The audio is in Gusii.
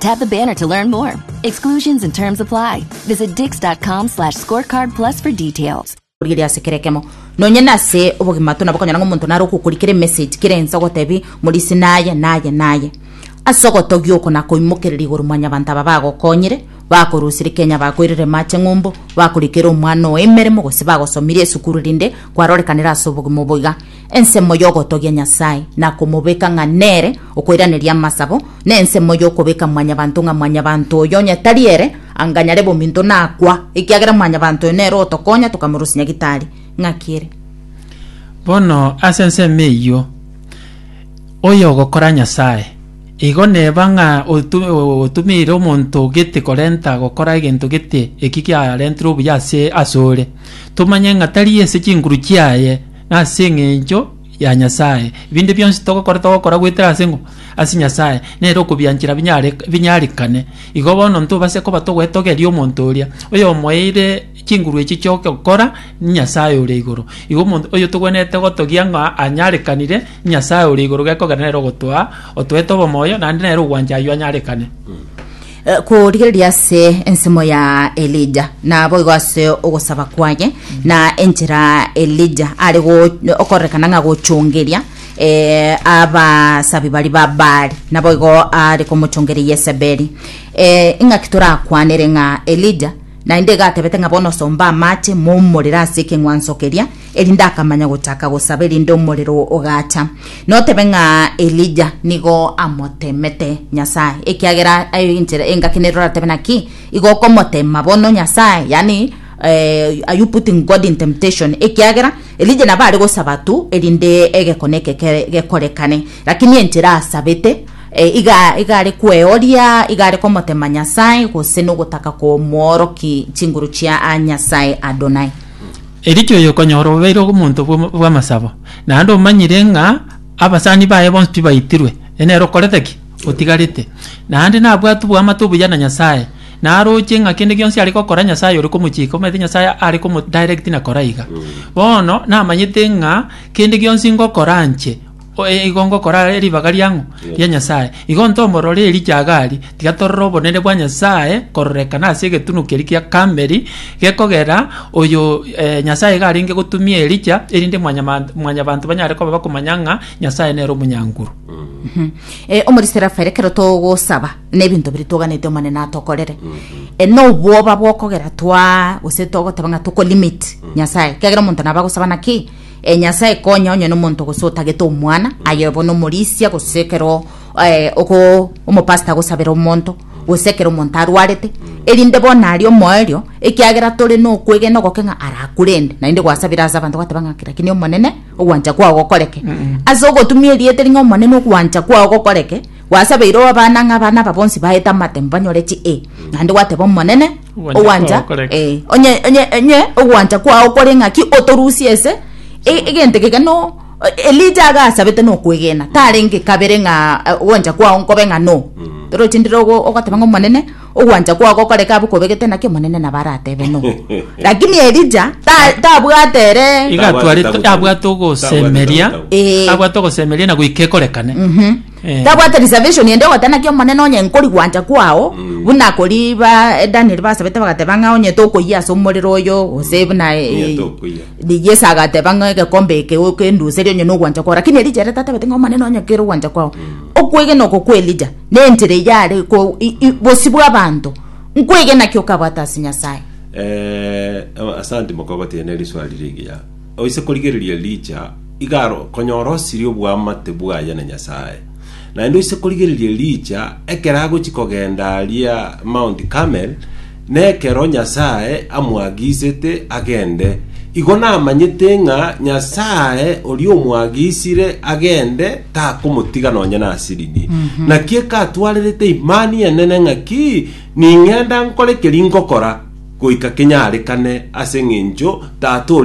Tap the banner to learn more. Exclusions and terms apply. Visit dix.com slash scorecard plus for details. orire ase kera ekemo nonye nase obogima to nabo konyora ng'a omonto nare okokori kera emessage kera ense ogotebi morisi naye naye naye ase ogotogia oko nakoimokereria igoro mwanyabanto aba bagokonyire bakorusire kenya bakoirire mache ng'umbu bakorikera omwana oyo emeremo gose bagosomirie esukuru rinde kwarorekanera ase obogima oboiga Ensemo y'ogotogia Nyasae na komobeka ng'a nere okoiraneria amasabo, nensemo y'okobeka mwanyabanto ng'a mwanyabanto oyo onye tari ere, anga nyare bominto nakwa, ekiagera mwanyabanto oyo nere otokonya tokamorusia nyagitari. Ng'aki ere. Bono ase ensemo eyio, oyogokora Nyasae, igo neba ng'a otu otumeire omonto gete korenta gokora egento gete eki giarentirwe obuya ase asore, tomanye ng'a tari ase chinguru chiaye, Nase engencho ya Nyasae, ebinde bionsi togokora togokora goetera ase ng'o? Ase Nyasae, nere okobianchera binyare binyarekane. Igo bono ntobase koba togwetogeria omonto oria, oyomoeire chinguru echi chi'ogokora, Nyasae ore igoro. Igo omonto oyotogwenerete gotogia ng'a anyarekanire, Nyasae ore igoro gekogera nere ogotoa otoete obomoyo, naende nere ogwancha ayio anyarekane. Eh, Korigereria ase ensemo ya Elija, naboigo ase ogosaba kwaye, na enchera Elija are go- okorekana ng'a gochongeria eh, abasabi bari ba Baali, naboigo are komochongeria Yesebeli. Eh, Ing'aki torakwanere ng'a Elija Naende egatebete ng'a bono somba amache momorere ase ekeng'wanso keria, erinde akamanya gochaka gosaba erinde omorero ogacha. Notebe ng'a Elija nigo amoteemete Nyasae, ekiagera aye enchera engaki nere oratebe naki igo okomoteema bono Nyasae, yaani eh, are you putting God in temptation? Ekiagera Elija nabo are gosaba tu erinde egekone eke kere gekorekane, lakini enchera asabete E, iga, iga are kweoria, iga are komotema Nyasae, gose nogotaka komworoki chinguru chia a Nyasae Adonai. Erikia oyokonyora obeire omonto bw'om- bw'amasabo, naende omanyire ng'a abasani baye bonsi tibaitirwe, e nere okorete ki? Otigarete. Naende nabwate oboamate obuya na Nyasae, naroche ng'a kende gionsi are gokora Nyasae ore komochika, omanyete Nyasae are komo direct na kora iga. Bono namanyete ng'a kende gionsi ngokora nche, Oye igo ngokora are ribaga riang'u ria Nyasae, igo ntomorore eri Jagari, tiga torore obonene bwa Nyasae kororekana ase egetunwa keria kia Karmeli, gekogera oyo eh, Nyasae iga arenge gotumia Elija, erinde mwanyamant- mwanyabanto banyare koba bakomanya ng'a Nyasae nere omonyankuru. Eh, omoriseri afaire ekero togosaba nebinto biria twoganete omonene atokorere Eh, nobwoba bwokogera twa gose togoteba ng'a tokolimit nyasae kiagera omonto naba agosaba naki Ee Nyasae, konya onye nomonto gose otagete omwana aye bono omorisia, gose ekero eh, ogo omopasita agosabera omonto, gose ekero omonto arwarete, erinde bono aria omoerio, ekiagera tore nokwegena ogoke ng'a arakurende, naende gwasabire ase abanto gwateba ng'a kera kinia Omonene, ogwancha kwao gokoreke. Ase ogotumia erieta eri ng'a Omonene ogwancha kwao gokoreke, gwasabeire oe abana ng'a abana aba bonsi baete amatembo banyore chi e, naende gwateba Omonene, Ogwancha ogwancha kwao koreke. eh, onye onye onye ogwancha kwao kore ng'aki otorusie ase e- egento keke no elija agasabete nokwegena tarenge kabere ng'a eh, ogwancha kwao nkobe ng'a no torochi ndire ogo- ogoteba ng'a omonene ogwancha kwao gokoreka abe kobegete naki omonene nabo aratebe no lakini elija ta- tabwate ere Iga Tabwate atware- tabu- abwate tabu. ogosemeria Tabwate tabu. Eh. abwate ogosemeria na goika ekorekane Tabwate reservation ende ogoteba naki Omonene onye nkori gwancha kwao buna kori ba eh, Daniel basabete bagateba ng'a onye tokoyia ase omorero oyo gose buna eh, Onye tokoyia. Di- Yesu agateba ng'a egekombe eke okenduserie onye nogwancha kwao lakini Elija ere tatabete ng'a Omonene onye kere ogwancha kwao okwegena oko kwa Elija na enchera eyio are ko- i- i- bosio bwa abanto nkwegena ki okabwate ase Nyasaye Eh, asante mokobati ene riswali rigiya Oise korigereria riicha, iga arokonyora osirie oboamate bwaye na Nyasae. Naende oise korigereria riicha, ekero agochia kogenda aria Mount Carmel, nekero Nyasae amoagisete agende. Igo namanyete ng'a Nyasae oria omoagisire agende takomotiga nonye nasirini. Naki ekatwarerete imani enene ng'aki ning'enda nkore keri ngokora, goika kenyarekane ase eng'encho Tata oria